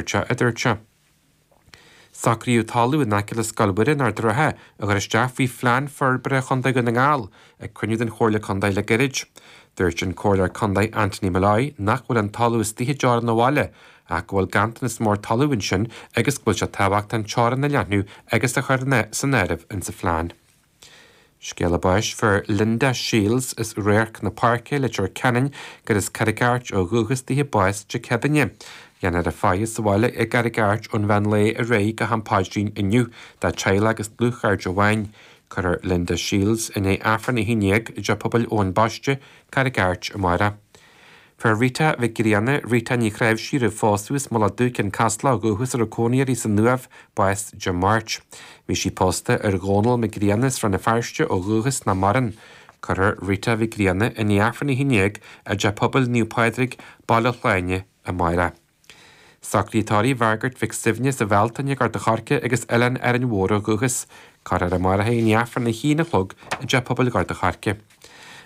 Rte, a dúirt sé. Socraíodh talamh in aice le Scoil Mhuire in Ard an Rátha a chur isteach faoi phlean forbartha chontae Dhún na nGall ag cruinniú den Chomhairle Contae le gairid. Dúirt an Comhairleoir Contae Anthony Molloy nach bhfuil an talamh istigh i dteorainn an bhaile ach go bhfuil ganntanas mór talamh ansin agus go bhfuil sé tábhachtach an teorainn a leathnú agus a chur san áireamh insa phlean. Scéala báis fuair Linda Shields as Radharc na Páirce i Leitir Ceanainn gurb as Carraig Airt ó dhúchas dithe bás Dé Céadaoin. Déanfar a faire sa bhaile i gCarraig Airt ón mheán lae ar aghaidh go ham paidrín inniu dá teaghlach agus dlúthchairde amháin. Cuirfear Linda Shields i ndiaidh Aifreann a haon déag i dTeach Pobail Eoin Baiste, Carraig Airt, amárach. Fuair Rita Mhic Grianna, Rita Ní Chnáimhsí roimh phósadh as Mullach Dubh, Ceann Caslach ó dhúchas a raibh cónaí uirthi san Uaimh bás Dé Máirt. Bhí sí pósta ar Dhónall Mac Grianna as Rann na Feirste ó dhúchas nach maireann. Cuirfear Rita Mhic Grianna i ndiaidh Aifreann a haon déag i dTeach Pobail Naomh Pádraig, Baile Shláine, amárach. Socruithe tórraimh Mhargaret Mhic Suibhne as an Bhealtaine, Gort an Choirce agus Oileán Árainn Mhór ó dhúchas, cuirfear amárach í i ndiaidh aifreann a haon a chlog i dteach pobail Ghort an Choirce.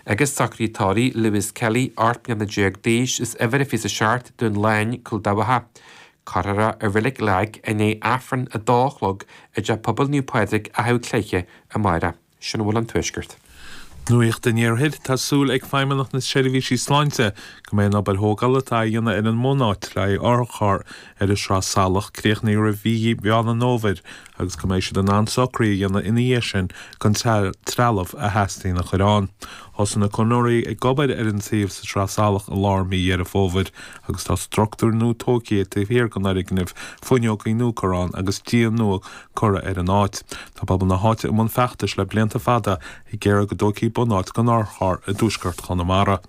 Agus socruithe tórraimh Lewis Kelly, ocht mbliana déag d'aois, as uimhir a fiche is a seacht, Dún Álainn, Cúil Dabhcha, cuirfear é i reilig Lagg i ndiaidh aifreann a dó a chlog i dteach pobail Naomh Pádraig, Achadh Cléithe, amárach. sin a bhfuil ón Tuaisceart. Nuacht an Iarthair, Tá súil ag Feidhmeannacht na Seirbhísí Sláinte go mbeidh an obair thógála atá á dhéanamh ar an mbunáit le haghaidh otharcharr ar an Sraith Salach críochnaithe roimh mhí Mheán an Fhómhair agus go mbeidh siad in ann socruithe a dhéanamh ina dhiaidh sin chun trealamh a theastaíonn a chur ann. Thosaigh na conraitheoirí ag obair ar an suíomh sa tSraith Salach i lár mhí Dheireadh Fómhair agus tá struchtúr nua tógtha taobh thiar den fhoirgneamh, fuinneogaí nua curtha ann agus díon nua curtha ar an áit. Tá pobal na háite i mbun feachtais le blianta fada ag iarraidh go dtógfaí bunáit don otharcharr i dtuaisceart Chonamara.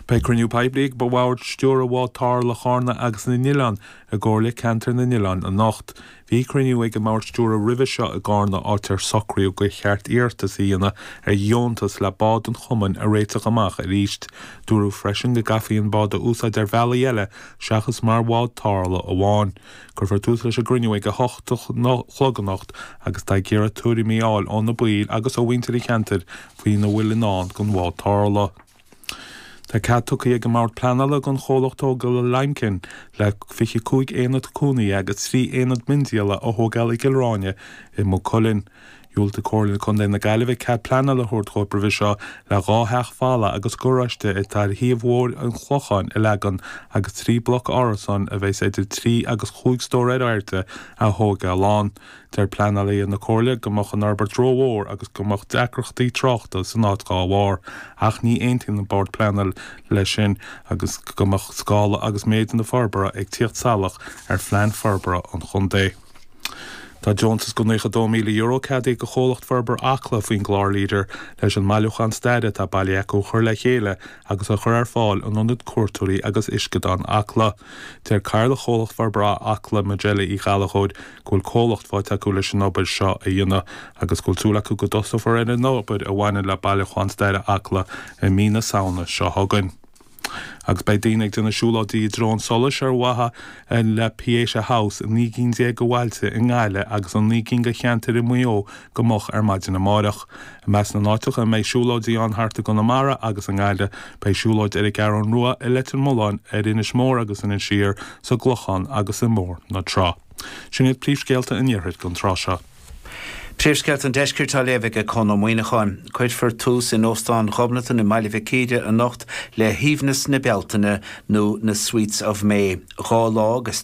Beidh cruinniú poiblí ag Bord Stiúrtha Bhád Tarrthála Chárna agus na nOileán i gComhairle Ceantair na nOileán anocht. Bhí cruinniú ag an mBord Stiúrtha roimhe seo i gCárna áit ar socraíodh gur cheart iarratas a dhéanamh ar dheontas le bád an chumainn a réiteach amach arís. Dúradh freisin go gcaithfí an bád a úsáid ar bhealaí eile seachas mar bhád tarrthála amháin. Cuirfear tús leis an gcruinniú ag a hocht a chlog anocht agus táthar ag iarraidh tuairimí a fháil ó na baill agus ó mhuintir an cheantair faoina bhfuil i ndán don bhád tarrthála. Tá cead tugtha ag an mBord Pleanála don chomhlacht tógála Limekiln le 25 aonad cónaithe agus 3 aonad miondíola a thógáil i gCill Ráine i Maigh Cuilinn. Dhiúltaigh Comhairle Contae na Gaillimhe cead pleanála a thabhairt dóibh roimhe seo le dhá theach fholmha agus garáiste atá ar shuíomh ar Bhóthar an Chlocháin a leagan agus trí bhloc árasán a bheas idir trí agus cúig stór ar airde a thógáil ann. Deir pleanálaithe na Comhairle go mbeadh an fhorbairt rómhór agus go mbeadh deacrachtaí tráchta san áit dá bharr ach ní aontaíonn an Bord Pleanála leis sin agus go mbeadh scála agus méid na forbartha ag tíocht salach ar phlean forbartha an chontae. Tá deontas de €92,000 ceadaithe do Chomhlacht Forbartha Acla faoin gclár leader leis an mbailiúchán staire atá bailithe acu a chur le chéile agus a chur ar fáil in Ionad Cuairteoirí agus Uisceadáin Acla. Deir Cathaoirleach Chomhlacht Forbartha Acla, Majella Uí Ghallachóir, go bhfuil comhlacht faighte acu leis an obair seo a dhéanamh agus go bhfuil súil acu go dtosófar ar an obair a bhaineann le bailiúchán staire Acla i mí na Samhna seo chugainn. Agus beidh daoine ag déanamh siúlóidí i dtreo an tsolais ar mhaithe le Pieta House, naoi gcinn déag de bhailte i nGaillimh agus i naoi gcinn de cheantair i Maigh Eo go moch ar maidin amáireach. I measc na n-áiteacha a mbeidh siúlóidí ann thart i gConamara agus i nGaillimh, beidh siúlóid ar an gCeathrún Rua, i Leitir Mealláin, ar Inis Mór agus in Inis Oírr, sa gClochán agus i mBóthar na Trá. Sin iad príomhscéalta an iarthair don tráth seo. Príomhscéalta an Deiscirt á léamh aige Conn Ó Muíneacháin. Cuirfear tús in Óstán Ghobnatan i mBaile Mhic Íre anocht le hAoibhneas na Bealtaine nó na Sweets of May, dhá lá agus.